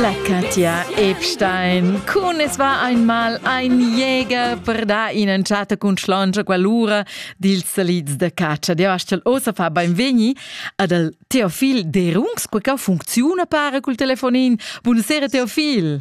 La Katja Epstein. Cun es va einmal ein Jäger per dar in'entschatta cun schlongia quell'ura dils salids da catscha. Dir astgel ossa fa beinvegni ad al Teofil Derungs, quei ca funcziuna para cul telefonin. Buonasera Teofil.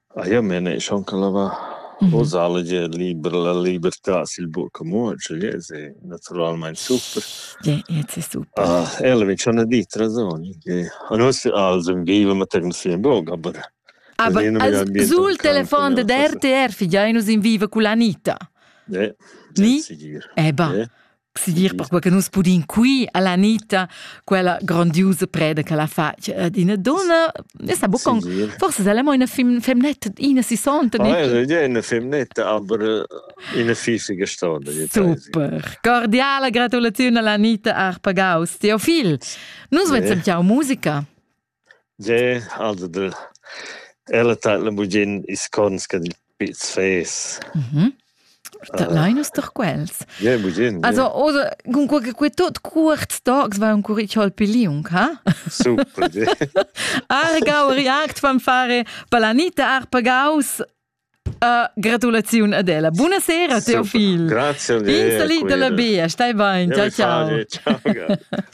Eir me ne schon ca lavà posale gia liber la libertà sül buc amur, cioè gliez è natüralmaing super. Sì, gliez è super. Ella vegn schon a dir rasoni che a nus als ün viva materna sia in bog, aber Aber sul telefon dad RTR figiainus in viva culla Anita. Ni? Eh bah. Si dir perquei che nus pudin qui alla Anita quella grandiose preda che la fa eh, d'ina donna e sa bucon forse se mo ina fem femnetta ina si sonta ah, è una femnetta aber ina fisica stonda super cordiale gratulazione alla Anita Arpagaus Teofil nus vezzem eh. ciao musica Ge, also der ella tat la bugin ils cons dil Piz Fes. Mhm. Dat lein nus doch quels. Ge, bugin. Also, oder cun quei che quei tot cuorts tocs va un curich hol piliung, ha? Super. ge. Argau react fan fare Palanita Arpagaus. Uh, gratulaziun ad ella. Buonasera, Super. Teofil. Grazie. Pinsali dalla bia, stai bein. Ciao, ciao. ciao.